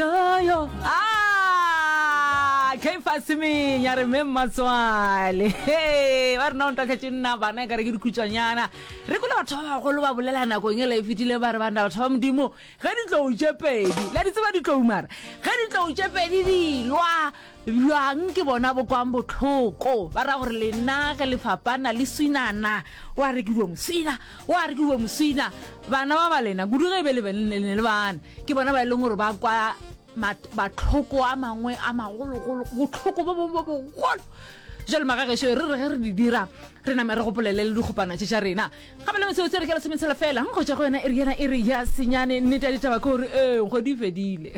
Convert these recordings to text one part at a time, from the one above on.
Yoyo, ah, Caiphas Menya re me mmatswale. Hey, ba rena o ntoka tše nna bana ka re ke dikhutswanyana. Re kole batho ba bagolo ba bolela nakong e la e fetile ba re bana batho ba modimo ge ditlou tše pedi. La di tseba ditlou mara. Ge ditlou tše pedi di lwa Bjang ke bona bo kwang bohloko, ba ra gore lena ge le fapana le swinana, wa re ke uwe moswina, wa re ke uwe moswina. Bana ba ba lena, kudu ge e be le ne le bana, ke bona ba e leng gore ba kwa batlhoko a mangwe a magologolo, botlhoko bo bongwe bo bogolo. Jale magagešo re re ge re di dira re name re gopolele le dikgopana tše tša rena Ga ba na metsotso e re ka lesometsela fela, go tšwa go yona iri yena iri ya senyane. Nnete ya ditaba ke gore ee, go di fedile.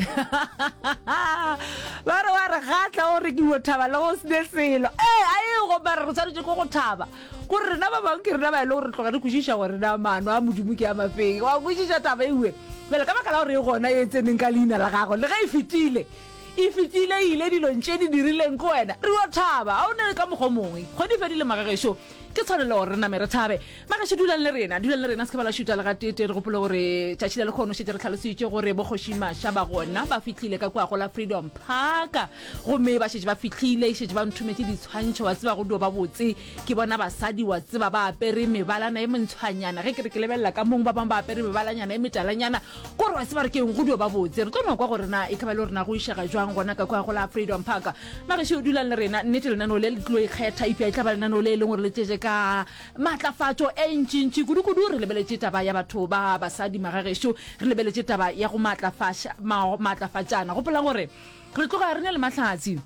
Ba re wa re gatla o re ke yo thaba le go sne selo. Ee, a e go mara re tshwanetse go go thaba gore rena ba bangwe ke rena ba e le gore re tloga re kwešiša gore na maano a modimo ke a mafeng wa kwešiša taba ewe bjale ka baka la gore e gona e tseneng ka leina la gago le ge e fetile e fetile e ile dilong tše di dirileng ke wena re yo thaba ga o ne ka mokgwa mongwe kgwedi fedile magagešo Ke tshwanelo gore re name re thabe. Magašo, dulang le rena, dulang le rena, se ke ba la šuta le gatete. Re gopole gore tšatši la lekgono šetse re tlhalositše gore bokgoši Masha ba gona ba fihlile ka kua go la Freedom Park gomme ba šetse ba fihlile, šetse ba nthometše ditshwantšho, wa tseba go dio ba botse ke bona basadi wa tseba ba apere mebalana e mentshwanyana, ge ke re ke lebelela ka mong ba bangwe ba apere mebalanyana e metalanyana, kore wa tseba re keng go dio ba botse. Re tlo no kwa gore na e ka ba le gore na go išega jwang gona ka kua go la Freedom Park. Magešu dulang le rena, nnete lenaneo le le tlo ikgetha, eupša e tla ba lenaneo le e leng gore le tšetše ka maatlafatšo e ntšintši kudukudu. Re lebeletše taba ya batho ba basadi, magagešu, re lebeletše taba ya go maatlafaša, ma, maatlafatšana. Gopolang gore re tloga re na le mahlatse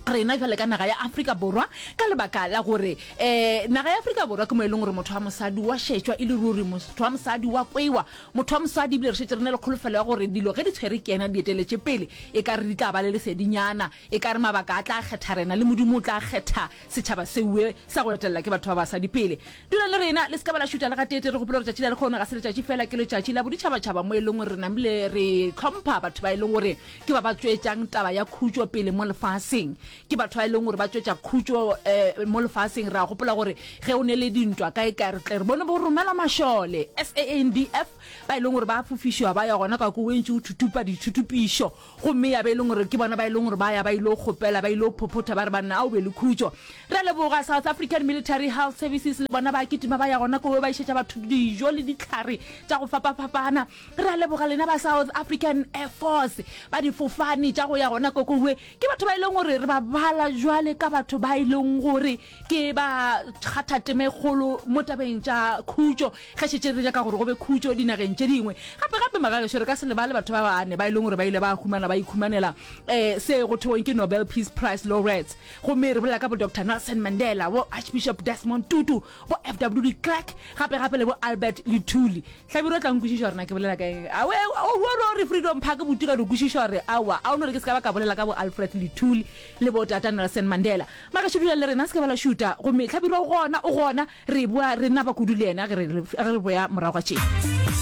rena bjale ka naga ya Afrika Borwa, ka lebaka la gore um naga ya Afrika Borwa ke mo e leng gore motho wa mosadi wa šetšwa e le ruri, motho wa mosadi wa kwewa, Motho wa mosadi, ebile re šetše re na le kholofelo ya gore dilo ge di tshwere ke yena di eteletše pele, e ka re di tla ba le lesedinyana. E ka re mabaka a tla kgetha rena, le Modimo o tla kgetha setšhaba seoe sa go etelela ke batho ba basadi pele. Dulang le rena, le se ka ba la šuta le gateetee. Re gopole gore tšatši la lekgono ga se letšatši feela, ke letšatši la boditšhabatšhaba mo e leng gore re namile re hlompha batho ba e leng gore ke ba ba tšwetšang taba ya khutšo pele mo lefaseng. ke batho ba e leng gore ba tswetša khutšo um mo lefaseng ra gopola gore ge o ne le dintwa kae kae re tle re bone bo romela mašole sandf ba e leng gore ba fofišiwa ba ya gona ka ko wentši o thutupa dithutupišo gomme ya ba e leng gore ke bona ba e leng gore ba ya ba ile kgopela ba ile phophotha ba re banna a o be le khutšo re leboga south african military health services le bona ba kitima ba ya gona ko ba išetša batho dijo le ditlhare tša go fapafapana re leboga lena ba south african air force ba difofane tša go ya gona kokowe Ke batho ba e leng gore re ba bala jwale ka batho ba e leng gore ke ba kgathateme kgolo mo tabeng tša khutšo ge šetse re jaka gore go be khutšo dinageng tše dingwe gape gape magageso re ka se lebale batho ba bane ba e leng gore ba ile ba humana ba ikhumanela um se go theweng ke nobel peace price laureates gomme re bolela ka bo dr nelson mandela bo archbishop desmond tutu bo fw de clark gape gape le bo albert le thuli hlabiro tla nkwešiša gore na ke bolela ka eng awe oro re freedom park buti ga re kwešiša gore awa a o no re ke se ka ba ka bolela ka bo alfred le thuli le bo tata nelson mandela mara šedula le rena se ke ba la šuta gomme hlabiro gona o gona re boa re naba kudu le yena ge re boya morago ga tšena